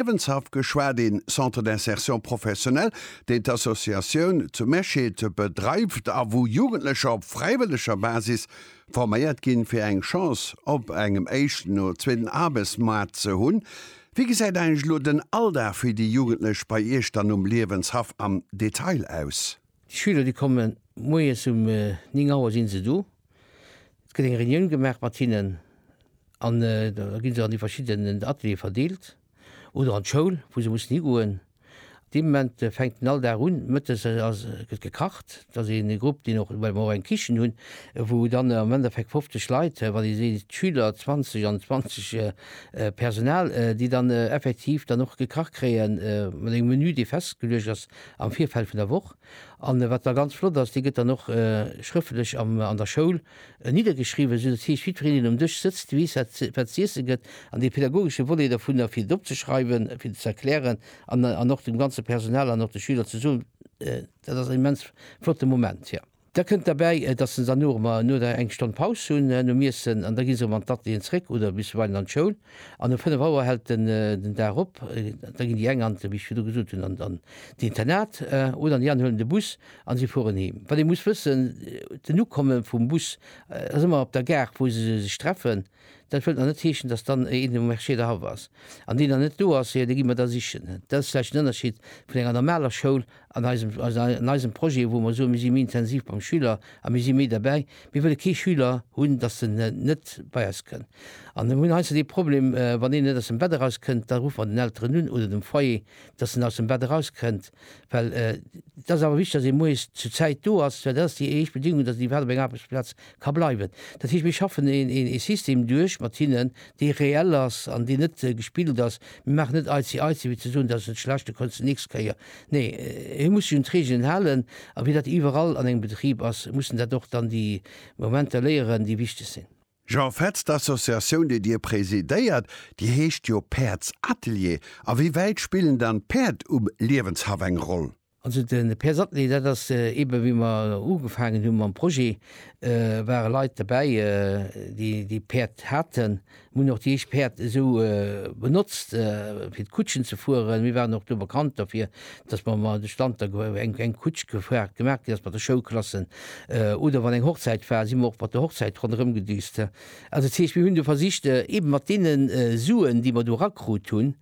Liewenshaff geschwat, een Centre d'insertion professionnelle, deen d'Associatioun zu Mesched bedreift a wou Jugendlecher op fräiwëlleger Basis forméiert ginn, fir eng Chance op engem éischten oder zweeten Arbechtsmaart ze hunn. Wéi gesäit eigentlech elo den Alldag fir déi Jugendlech bei Iech dann um Liewenshaff am Detail aus? Déi Schüler, déi komme moies um 9 Auer si se do. Et gëtt eng Reunioun gemaach mat hinnen an da gi se an déi verschidden Ateliere verdeelt oder an d'Schoul, wou se mussen higoen. Dee Moment fänkt den Alldag un. Mëttes ass, gëtt gekacht. Et ass een Grupp, deen och, well mer och eng Kichen hunn, wou dann am Endeffekt 50 Leit, wann ee seet d'Schüler 20 an 20 Personal, déi dann effektiv dann och gekacht kréie mat engem Menü, dee festgeluecht ass, am Virfeld vun der Woch. A wat da ganz flott ass, déi gëtt dann och schrëftlech an der Schoul niddergeschriwwen, esou dass heescht jiddwereen um Dësch sëtzt, weess wat z'iesse gëtt. An dee pädagogesche Volet dovun, fir et opzeschreiwen, fir et ze erklären an och dem ganze Personal an och de Schüler ze soen, dat ass en immens flotte Moment, jo. Da kënnt derbäi, dass se dann och ëmmer no der eng Stonn Paus hunn nom Iessen, an da gi se erëm an d'Atelieren zeréck oder bisweilen an d'Schoul. An um fënnef Auer hält den den Dag op. Da ginn déi eng an, wéi ech virdu gesot hunn, an an d'Internat oder an déi aner huelen de Bus a si fueren heem. Wat ee muss wëssen, den Ukomme vum Bus ass ëmmer op der Gare, wou se sech treffen. Dat wëllt nach net heeschen, dass dann een um Marché der haff ass an deen dann net do ass, jo da gi mer da sichen. Dat ass vläicht den Ënnerschied vun enger normaler Schoul an eisem, an eisem Projet, wou mer soen, mir si méi intensiv beim Schüler a mir si méi derbäi. Mir wëlle kee Schüler hunn, dass en net bei eis kënn. An mir hunn heiansdo dee Problem, wann een net aus dem Bett eraus kënnt, da ruffe mer den Elteren un oder dem Foyer, dass en aus dem Bett eraus kënnt, well et ass awer wichteg, dass ee moies zu Zäit do ass, well dat ass déi éischt Bedingung, dass en iwwerhaapt op eng Aarbechtsplaz Ka bleiwen. Dat heescht, mir schaffen ee System duerch mat hinnen, dee reell ass an deen net gespillt ass. Mir maachen net Aizi-Aizi, wéi ze soen, dat ass net schlecht, da kënns de nächst Kéier. Nee, hie muss sech un d'Reegelen halen. A wéi dat iwwerall an engem Betrib ass, mussen dat och dann déi Momenter léieren, déi wichteg sinn. Jean Fetz, D'Associatioun, déi Dir presidéiert, déi heescht jo Päerdsatelier. A wéi wäit spillen dann d'Päerd um Liewenshaff eng Roll? Also de Per Sattny, dat ass eebe wéi mer ugefaangen hu mam Projet, ware Leit dobäi, déi Päerd haten. Mir hunn och déi éischt Päerd esou benotzt, fir d'Kutschen ze fueren. Mir waren och do bekannt dofir, datt mer mol de Stand da eng Kutsch gefaart gemaach ginn ass mat de Schoulklassen. Oder wann eng Hochzäit war, si mer och mat der Hochzäit ronderëm gedüst. Also dat heescht, mir hunn do versicht, eebe mat deene Suen, déi mer do erakrut hunn,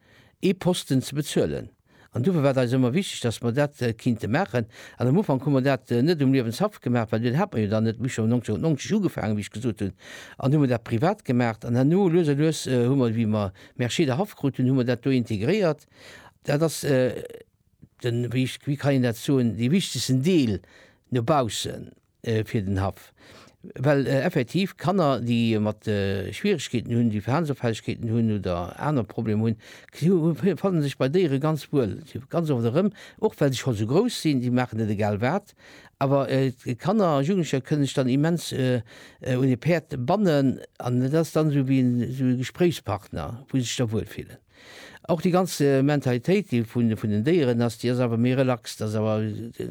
ee Posten ze bezuelen. An dofir war et eis ëmmer wichteg, dass mer dat kinnte maachen. An am Ufank hu mer dat net um Liewenshaff gemaach, well deen hat mer jo dann net. Mir hu scho 1990 ugefaangen, wéi ech gesot hunn, an hu mer dat privat gemaach. An herno, lues a lues, hu mer, wéi mer Mercier der Haff kruten, hu mer dat do integréiert. Dat ass den, wéi kann een dat soen, dee wichtegsten Deel no baussen. fir den Haff, well effektiv Kanner, déi mat Schwieregkeeten hunn, déi Verhalensopfällegkeeten hunn oder aner Problemer hunn, si fanne sech bei Déiere ganz wuel. Si ganz oft erëm, och well se scho sou grouss sinn, si maachen net egal wat. Awer Kanner a Jugendlecher kënne sech dann immens un e Päerd bannen an et ass dann esou wéi e Gespréichspartner, wou se sech da wuel fillen. Och déi ganz Mentalitéit déi vun vun den Déieren ass, déi ass awer méi relax. Dat ass awer,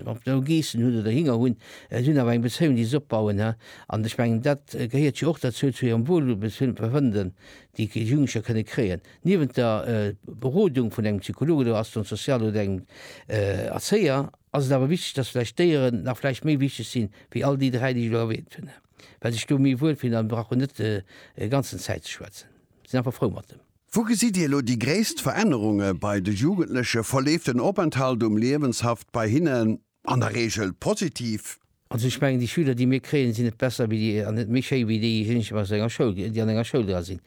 ob se elo Geessen hunn oder Hinger hunn, se hunn awer eng Bezéiung déi se opbauen, he. An ech mengen dat gehéiert jo och derzou, zu hirem Wohlbefinden, déi déi Jugendlecher kënne kréien. Niewent der Berodung vun engem Psycholog oder Assistant social oder engem Erzéier ass et awer wichteg, dass vläicht d'Déieren nach vläicht méi wichteg sinn, wéi all déi dräi déi ech elo erwähnt hunn, he, well se sech do méi wuelfillen a brauchen net e ganzen Zäit ze schwätzen, sinn einfach frou mat dem. Wou gesitt Dir elo déi gréisst Verännerunge bei de Jugendlechen? Verleeft den Openthalt um Liewenshaft bei hinnen an der Reegel positiv? Also ech mengen, déi Schüler, déi mir kréien, sinn net besser wéi déi an net méi schéi wéi déijéineg, aus enger Schoul, déi an enger Schoul dra sinn.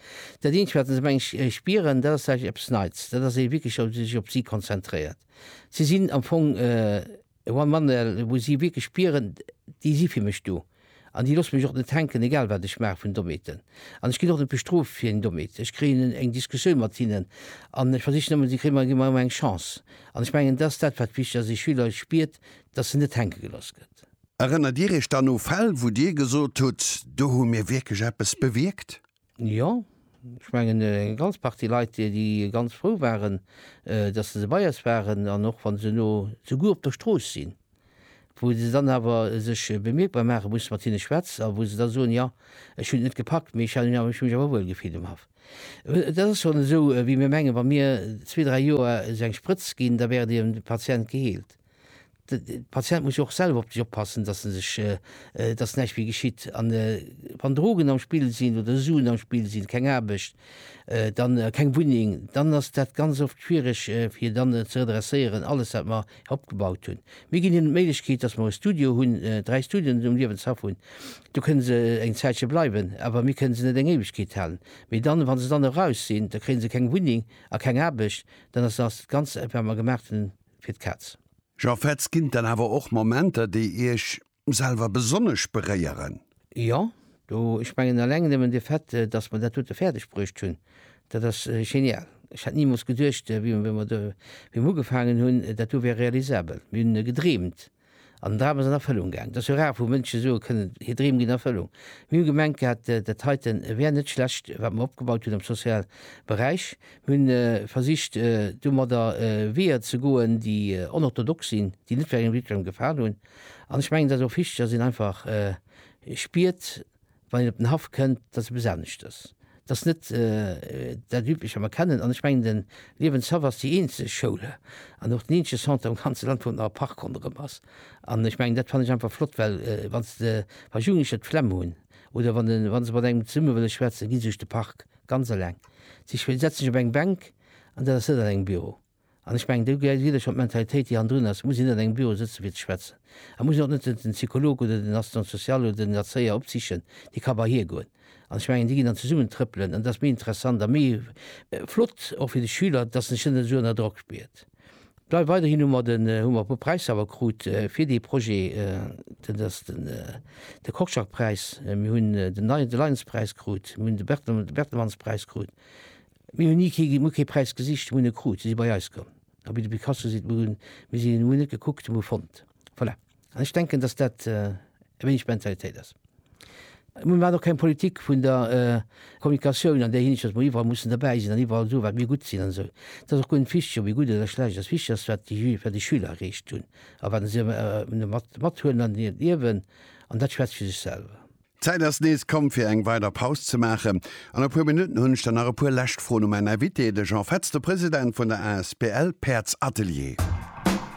Dat Eenzegt, wat se meng ech spieren, dat ass, sage ech, eppes Neits, dat ass, wéi ee wierklech sech op si konzentréiert. Si sinn am Fong. Juan Manuel, wou si wierklech spieren, déi si fir mech do an déi loosse mech och net hänken, egal wat ech maache vun domeeten. An ech ginn och net bestrooft fir eng Domeet. Ech kréien eng Diskussioun mat hinnen an ech versichen ëmmer, si kréie mer, gi mer ëmmer eng Chance. An ech mengen, dat ass dat, wat wichteg ass, ee Schüler spiert, dass en net hänke gelooss gëtt. Erënnert Dir Iech dann u Fäll, wou Dir gesot hutt, do hu mir wierklech eppes bewierkt? Jo, ech mengen eng ganz Partie Leit, déi ganz frou waren, datt se bei eis waren an och wa se elo souguer op der Strooss sinn, wou se dann awer sech bemierkbar maache musse, mat hinne schwätz a wou se da soen, jo, ech hunn et net gepackt, mee ech hunn mech awer wuel gefillt um Haff. Et ass schonn esou, wéi mir mengen, wa mir zwee, dräi Joer esou eng Sprëtz ginn, da wär dee Patient geheelt. De Patient muss jo och selwer op sech oppassen, dass en sech, dass näischt méi geschitt. An wann Drogen am Spill sinn oder Suen am Spill sinn, keng Aarbecht, dann keng Wunneng, dann ass dat ganz oft schwiereg fir dann ze redresséieren alles wat mer opgebaut hunn. Mir ginn hinnen d'Méiglechkeet, dass mer e Studio hunn, dräi Studioen um Liewenshaff hunn. Do kënne se eng Zäitche bleiwen, awer mir kënne se net eng Éiwegkeet halen. Mee dann, wa se dann eraus sinn, da kréie se keng Wunneng a keng Aarbecht, dann ass ass dat Ganzt wat mer gemacht hunn fir d'Kaz. Jean Fetz, Ginn et dann awer och Momenter, déi Iech selwer besonnesch beréieren? Jo, do, ech mengen alleng nëmmen de Fait, datt mer dat dote fäerdeg bruecht hunn, dat ass genial. Ech hätt nimools geduecht, wéi mer ugefaangen hunn, dat do wär realisabel. Mir hunn gedreemt. An den Dram ass an Erfëllung gaang. Et ass jo rar, wou Mënsche soe kënnen, hir Dreem ginn Erfëllung. Mir hu gemengt gehat, dat heiten wär net schlecht, wat mer opgebaut hunn am soziale Beräich. Mir hunn versicht, domadder Weeër ze goen, déi onorthodox sinn, déi net vläicht engem jiddwerengem gefalen hunn. An ech mengen, et ass och wichteg, dass een einfach spiert, wann een op den Haff kënnt, dat ass eppes aneschtes. Dat ass net dat Üblecht, wat mer kennen. An ech mengen, de Liewenshaff ass déi eenzeg Schoul an och den eenzege Centre am ganze Land, wou nach e Park ronderëm ass. An ech mengen, dat fannen ech einfach flott, well wann s de, wa Jugendlecher d'Flemm hunn oder wann se mat engem zesumme wëlle schwätzen, gi se sech de Park, ganz eleng. Si setzen sech op eng Bänk an dat ass net an engem Büro. An ech mengen, do geet et ëm d'Mentalitéit, déi hannendrun ass. Et muss een net an engem Büro sëtzen, fir ze schwätzen. Et muss een och net den Psycholog oder den Assistant social oder den Erzéier opsichen. Dee ka bei hie goen. An ech mengen, déi ginn dann zesummen trëppelen. An et ass méi interessant a méi flott och fir de Schüler, dass en sech net esou ënner Drock spiert. Dei weiderhin hu mer den, hu mer e puer Präisser awer krut fir dee Projet. Dat ass den, de Korczak-Präis, mir hunn den Lions-Präis krut, mir hunn de Bertelsmanns-Präis krut. Mir hunn ni kee, mir hu kee Präis gesicht, mir hunn e krut, si si bei eis komm. A wéi de Picasso seet, mir hunn, mir sinn, mir hunn net gekuckt, mir hu fonnt. Voilà. An ech denken, dass dat e wéineg d'Mentalitéit ass. Mir maachen och keng Politik vun der Kommunikatioun an där Hinsicht, dass mer iwwerall mussen derbäi sinn an iwwerall soen, wat mir gutt sinn an esou. Et ass och guer net wichteg, ob ee gutt oder schlecht ass. Wichteg ass, wat déi Ju, wat déi Schüler erreecht hunn a wat se mat, mathuelen an hiert Liewen. An dat schwätzt fir sech selwer. D'Zäit ass nees komm fir eng weider Paus ze maachen. An e puer Minutten hunn ech dann nach e puer lescht Froen u mäin Invité, de Jean Fetz, de President vun der asbl Päerdsatelier.